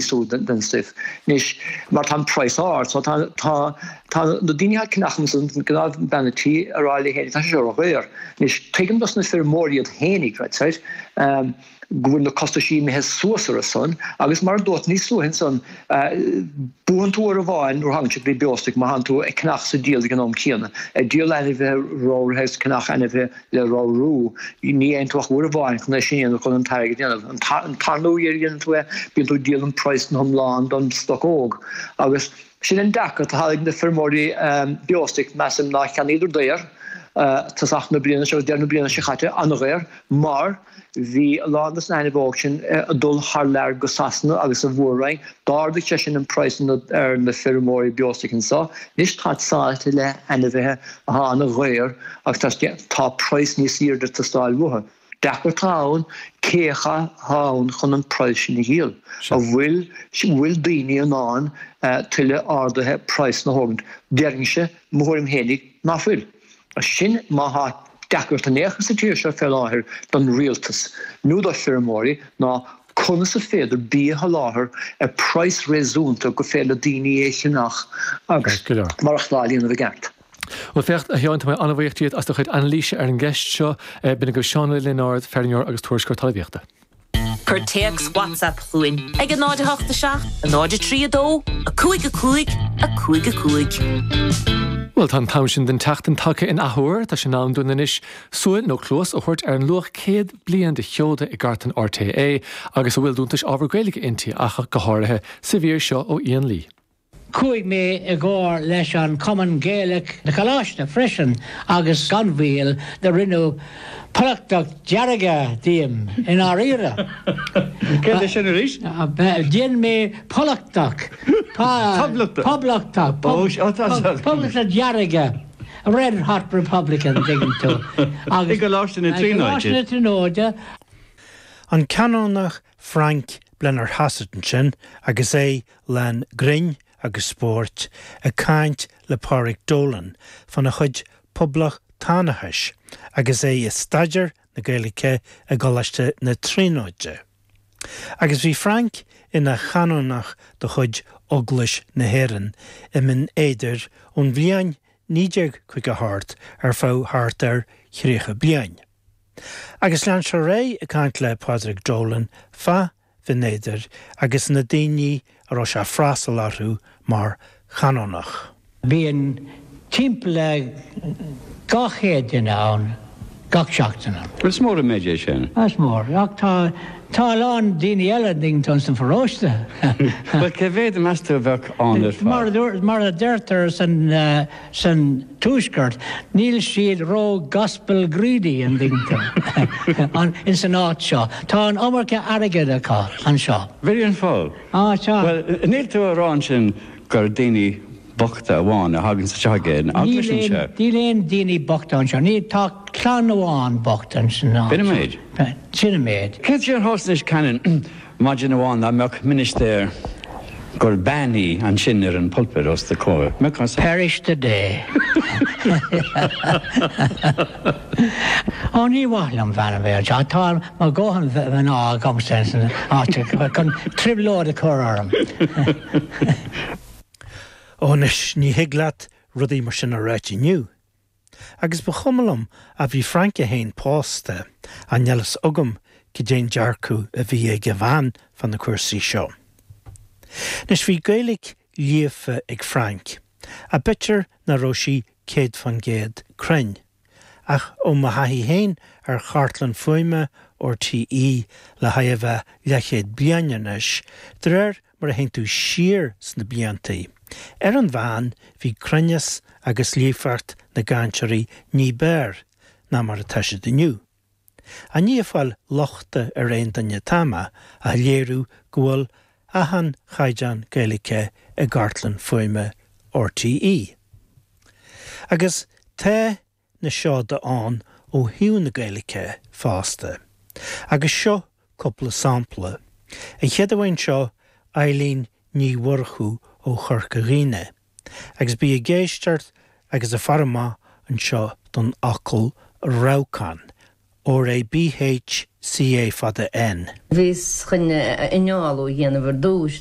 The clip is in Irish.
suas den stuif anois mar tá an praghas ard so tá tá tá na daoine athá ag ceannach ansan gnáth bean tí ag rá léi féinig tá sé seo ródhaor anois tuigim dos na feirmeoirí iad féinig deir siad ehm go bhfuil na costaisí imithe suas orthusan agus mar a dúirt níos luaithe ansan eh buann tú uair amháin nuair a thagann sé go dtí beostoc má thánn tú ag ceannach is ag díol ag an am céanna ag díol ainmhithe ramhraithe is ag ceannach ainmhithe le ramhrú, ní dhéanann tú ach uair amháin chun é sin a dhéanamh, chun an t-airgead a dhéanamh. An tarna uair a dhéanann tú é, bíonn tú ag díol an praghas ina iomlán don stoc óg. Agus sin an dearcadh atá ag na feirmeoirí beostoic, measaim ná cheannaíodar daor tosach na bliana seo, agus deireadh na bliana seo caite, an-dhaor, mar, Bhí a lán des na hainmhithe óg sin ag dul thar lear go Sasana agus an Mhór-Roinn. D'ardaigh sé sin an praghas ar na feirmeoirí beostoic anseo. Anois tá sáite le hainmhithe atá an-dhaor agus tá praghas níos airde ag teastáil uathu. Deacracht atá ann cé atá ann chun an praghas sin a dhíol. An bhfuil bhfuil daoine in ann tuilleadh ardaithe praghsanna a thógaint? Déarfainn-se mo thuairim fhéinig ná fuil. Sin má thá deacracht in aon chor sa tír seo fé láthair don rialtas, nó dos na feirmeoirí, ná conas is féidir bia a sholáthar ar praghas réasúnta gur féidir le daoine é a cheannach agus maireachtáil a dhéanamh i gceart. Bhuel, féach, a Sheáin, tá mé an-bhuíoch díot as do chuid anailíse ar an gceist seo. B'in agaibh Seán Ó Lionáird, feirmeoir agus tuairisceoir talmhaíochta. Cuir téacs WhatsApp chugainn ag 08 7 0 3 2 5 5 5 5. Bhuel, tá an t-am sin den tseachtain tagtha in athuair. Tá sé in am dúinn anois súil, nó cluas, a thabhairt ar an luach céad bliain de sheoda i gcartlann RTÉ, agus a bhfuil d'iontais ábhar Gaeilge inti, ach go háirithe, sa mhír seo ó Ian Lee. Chuaigh mé i gcomhar leis an Chumann Gaelach na Coláiste freisin agus gan mhoill do rinneadh Polachtach Dearg díom i ndáiríre. Céard é sin arís? Dhein mé Polachtach. Poblachtach. Poblachtach. Ó, sea, tá an. Poblachtach Dearg. Red Hot Republican, an dtuigeann tú. I gColáiste na Tríonóide. I gColáiste na Tríonóide. An Canónach Frank Blennerhassett ansin agus é lán grinn agus spóirt ag caint le Pádraic Dolan faoina chuid poblachtánachais agus é ag staidéar na Gaeilge i gColáiste na Tríonóide. Agus bhí Frank ina chanónach de chuid Eaglais na hÉireann i mBinn Éadair ón bhliain 1950 thart ar feadh thart ar thríocha bliain. Agus lean sé ar aghaidh ag caint le Pádraig Dolan fá Bhinn Éadair agus na daoine a raibh sé ag freastal orthu mar Chanónach. Bíonn timpeall le 200 duine ann gach seachtain. Is mór an méid é sin. Is mór, ach tá tá a lán daoine eile ag ligint ann sa pharóiste. Bhuel, cé mhéad, meas tú, a bheadh ann ar fad? Mar a deirtear. san tuaisceart, níl siad ró gospel greedy in Bingham, an, in san áit seo. Tá an iomarca airgid acu anseo. Bhí an fáth. Á, tá. Bhuel, níl tú ag rá ansin gur daoine bochta amháin a thaganns anseo ag aon eaglais anseo? Níl aon, níl aon daoine bochta anseo. Níl, tá clann amháin bocht in san áit. B'in an méid? Sin an méid. Céard faoi an Háisainis Cannon? Maidin amháin dá mbeadh ministéir gur bean í ansin ar an pulpit os do chomhair, mbeadh as. Parish today. Ó, ní mhaith liom bhean a bheith anseo, tá mo dhóthain mhná agamsa ins an áit seo chun trioblóid a chur orm. Ó, anois, ní thig leat rudaí mar sin a ráit inniu. Agus ba chuma liom, a bhí Francie fhéin pósta, an fhios agam caidé'n dearcadh a bhí ag a bhean fá na cúrsaí seo. Anois, bhí Gaeilic líofa ag Frank, abaitear ná raibh sí céad fán gcéad cruinn, ach ó mo thaithí fhéin ar chartlann fuaime RTÉ le chóir a bheith leathchéad bliain anois, d'réir mar a théann tú siar sna blianta. Ar an mheán, bhí cruinneas agus líofacht na gcainteoirí ní b'fhearr ná mar atá siad inniu. Ní ag fáil lochta ar aon duine atá mé ach léiriú go bhfuil achan chaighdeán Gaeilice i gcartlann fuaime RTÉ. Agus tá. na seoda ann ó thaobh na Gaeilge fosta, agus seo cúpla sampla, an chéad amháin seo, Eileen Ní Mhurchú ó Chorca Dhuibhne, agus bí ag éisteacht agus ag faire amach anseo don fhocal rabhcán, RABHCÁN fada N. Bhíos chun innealú a dhéanamh ar dtús,